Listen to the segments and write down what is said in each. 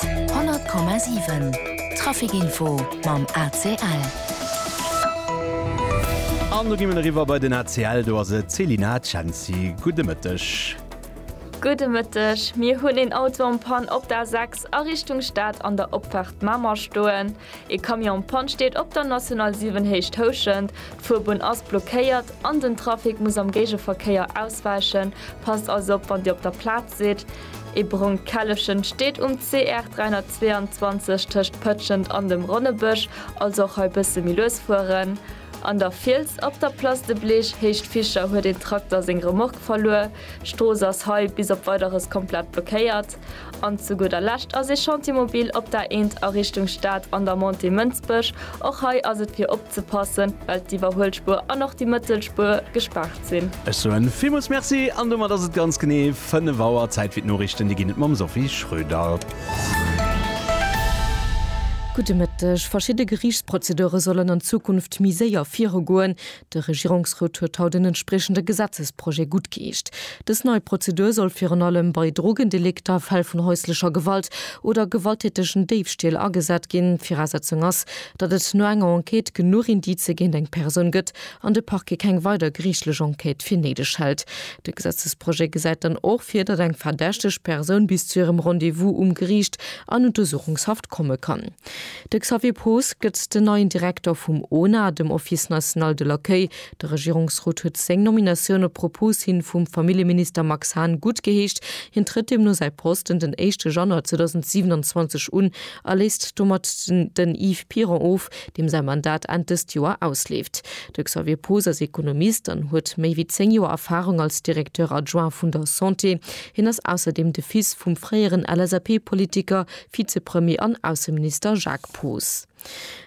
100,7 Trafic Info mam ACL. An do gi mir eriwwer bei den ACL, do ass et d'Selina Cenci. Gudde Mëtteg. Gudde Mëtteg. Mir hunn een Auto en panne op der A6 a Richtung Stad an der Opfaart Mamer stoen. Ee Camion Panne steet op der National 7 Héicht Houschent. D'Fuerbunn ass blockéiert an den Trafic muss am Géigeverkéier auswäichen. Passt also op, wann Dir op der Plaz sidd. Ee brongt Källefchen steet um CR 322 tëscht Pëtschent an dem Ronnebësch, also och hei bësse méi lues fueren. An der Fiels op der Place de Bleech Héicht Vicher huet een Trakter seng Remorque verluer. D'Strooss ass hei bis op Weideres komplett blockéiert. An zu gudder Lescht ass ee Chantier mobil op der Eent a Richtung Stad an der Montée Mënsbech. Och hei ass et fir opzepassen, well d'Iwwerhuelspuer an och déi Mëttelspuer gespaart sinn. Ech soen villmools Merci an domat ass et ganz genee 5 Auer. Zäit fir d'Noriichten, déi ginn et mam Sophie Schröder. Gudde Mëtteg. Verschidde Geriichtsprozedure sollen an Zukunft méi séier virugoen. De Regierungsrot huet haut en entspriechende Gesetzesprojet guttgeecht. Dës nei Prozedur soll virun allem bei Drogendelikter, Fäll vun häuslecher Gewalt oder gewalttätegen Déifstiel agesat ginn. D'Virasetzung ass, datt et no enger Enquête genuch Indicë géint eng Persoun gëtt an de Parquet keng weider geriichtlech Enquête fir néideg hält. De Gesetzesprojet gesäit dann och vir, datt eng verdächteg Persoun bis zu hirem Rendez-vous um Geriicht an Untersuchungshaft komme kann. De Xavier Poos gëtt den neien Direkter vum ona, dem Office national de l'accueil. De Regierungsrot huet seng Nominatioun op Propos hin vum Familljeminister Max Hahn guttgeheescht. Hien trëtt deemno säi Posten den éischte Januar 2027 un a léist domat den Yves Piron of, deem säi Mandat Enn dëst Joer ausleeft. De Xavier Poos ass Ekonomist an huet méi wéi zéng Joer Erfarung als Directeur adjoint vun der Santé. Hien ass ausserdeem de Fils vum fréieren LSAP-Politiker Vizepremier an Ausseminister Jacques Poos.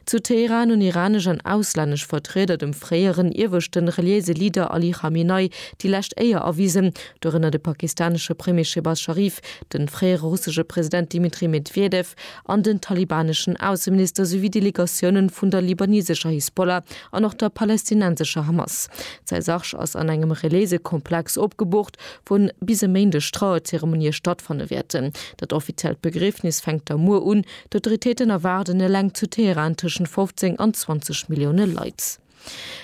Zu Teheran hunn iranesch an auslännesch Vertrieder dem fréieren ieweschte reliéise Leader Ali Khamenei déi lescht Éier erwisen, dorënner de pakistanesche Premier Shehbaz Sharif, de fréiere russesche President Dmitri Medwedew an den talibaneschen Ausseminister souwéi Delegatioune vun der libanesescher Hisbollah an och der palästinensescher Hamas. D'Saisarch ass an engem reliéise Komplex opgebucht, wou bis e Méindeg d'Trauerzeremonie stattfanne wäerten. Dat offiziellt Begriefnis fänkt da muer un. D'Autoritéiten erwaarden eleng zu Teheran tëschent 15 an 20 Millioune Leit.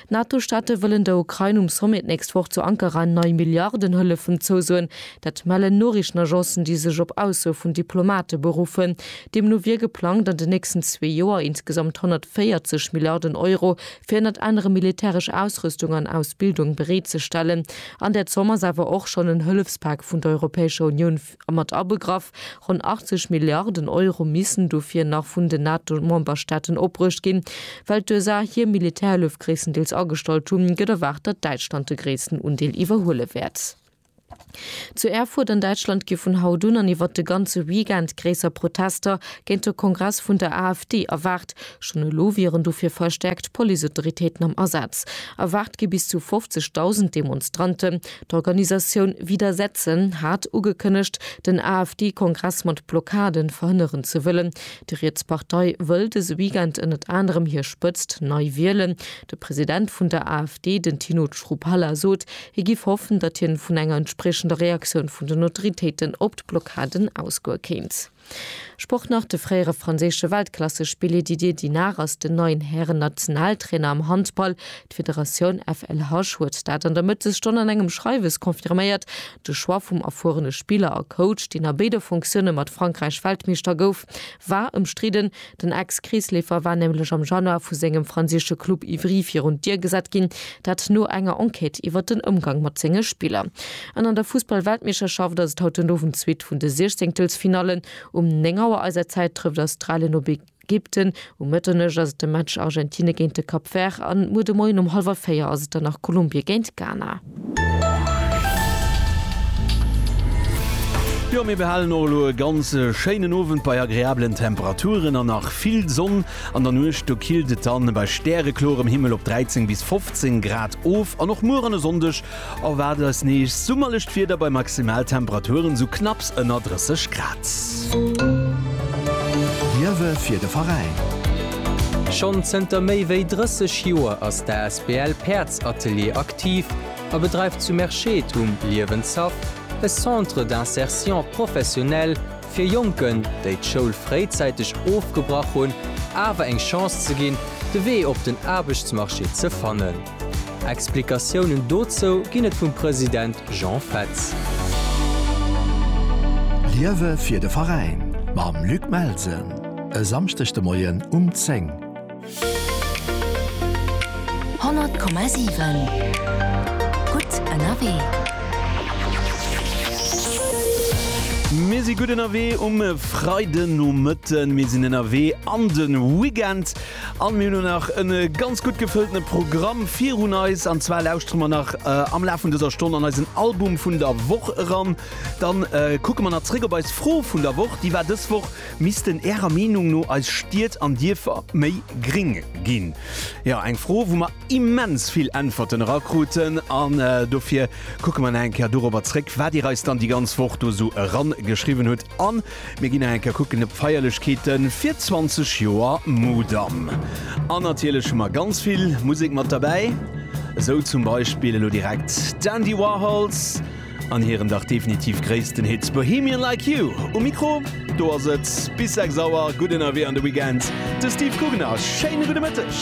D'NATO-Staate wëllen der Ukrain um Sommet d'nächst Woch zu Ankara nei Milliardenhëllefen zousoen. Dat mellen Noriichtenagencen, déi sech op Aussoe vun Diplomate beruffen. Deemno wier geplangt, an den nächsten zwee Joer insgesamt 140 Milliarden Euro fir ënnert anerem militäresch Ausrüstung an Ausbildung bereetzestellen. An där Zomm ass awer och schonn en Hëllefspak vun der Europäescher Unioun mat abegraff. Ronn 80 Milliarden Euro missen dofir nach vun den NATO-Memberstaaten opbruecht ginn. Well d'USA hir Militärhëllef gréisstendeels agestallt hunn, gëtt erwaart, datt Däitschland de gréissten Undeel iwwerhuele wäert. Zu Erfurt an Däitschland gi vun haut un an iwwert de ganze Weekend gréisser Protester géint de Kongress vun der AfD erwaart. Schonn elo wieren dofir verstäerkt Policeautoritéiten am Asaz. Erwaart gi bis zu 50.000 Demonstranten. D'Organisatioun Wieder Setzen hat ugekënnegt, den AfD-Kongress mat Blockade verhënneren ze wëllen. Déi riets Partei wëll dëse Weekend ënnert anerem hir Spëtzt nei wielen. De President vun der AfD, den Tino Chrupalla sot, hie giff hoffen, datt hien vun enger entspriechender Reaktioun vun den Autoritéiten op d'Blockaden ausgoe kéint. Sport nach, De fréiere franséische Weltklassespilli Didier Dinard ass den neien Hären-Nationaltrainer am Handball. D'Federatioun FLH huet dat an der Mëttesstonn an engem Schreiwes confirméiert. De Choix vum erfuerene Spiller a Coach, deen a béide Funktioune mat Frankräich Weltmeeschter gouf, war ëmstridden. Den Ex-Kreesleefer war nämlech am Januar vu sengem franséische Club Ivry virun d'Dier gesat ginn, dat no enger Enquête iwwert den Ëmgang mat senge Spiller. An an der Fussball-Weltmeeschterschaft ass et haut den Owend zweet vun de Siechzéngtelsfinallen. Um 9 Auer eiser Zäit trëfft Australien op Ägypten, um Mëtternuecht ass et de Match Argentine géint de Cap Vert an muer de Moien um hallwer véier ass et dann nach Kolumbie géint Ghana. Jo, mir behalen och elo e ganz schéinen Owend bei agreablen Temperaturen an nach vill Sonn. An der Nuecht do killt et dann bei stärekloerem Himmel op 13 bis 15 Grad of an och muer an e Sonndeg erwaart eis nees summerlecht Wieder bei Maximaltemperaturen esou knapps ënner 30 Grad. Liewe fir de Veräin! Schonn zënter méi wéi 30 Joer ass d'asbl Päerdsatelier aktiv. aktiv a bedreift zu Merschett um Liewenshaff e Centre d'insertion professionnelle fir Jonken, déi d'Schoul fréizäiteg ofgebrach hunn, awer eng Chance ze ginn, de Wee op den Aarbechtsmarché ze fannen. Explikatiounen dozou ginn et vum President Jean Fetz. Liewe fir de Veräin mam Luc Melsen e Samschdeg de Moien um 10. Honnert Komma siwen, gutt ënnerwee! Mir si gutt ënnerwee um Freidenomëtten. Mir sinn ënnerwee an de Weekend an mir hunn och nach en ganz gutt gefëlltene Programm virun eis. An zwar lauschtere mer nach am Laf vun dëser Stonn an eisen Album vun der Woch eran. Dann kucke mer nach zréck op eis Fro vun der Woch. Déi war dës Woch, Missten Ärer Meenung no eis Stied an Dierfer méi gring ginn? Jo, eng Fro, wou mer immens vill Äntwerten erakruten an dofir kucke mer nach eng Kéier dorobber zréck, wat Dir eis dann déi ganz Woch do esou erangeschriwwen hutt an mir ginn nach eng Kéier kucken op d'Feierlechkeete fir 20 Joer Mudam. An natierlech hu mer ganz vill Musek mat derbäi, esou zum Beispill elo direkt d'Andy Warhols, An hiren dach definitiv gréissten Hit Bohemian Like You. Um Mikro, do ass et bis 6 Auer gutt ënnerwee an de Weekend, de Steve Guggeners. Schéine gudde Mëtteg.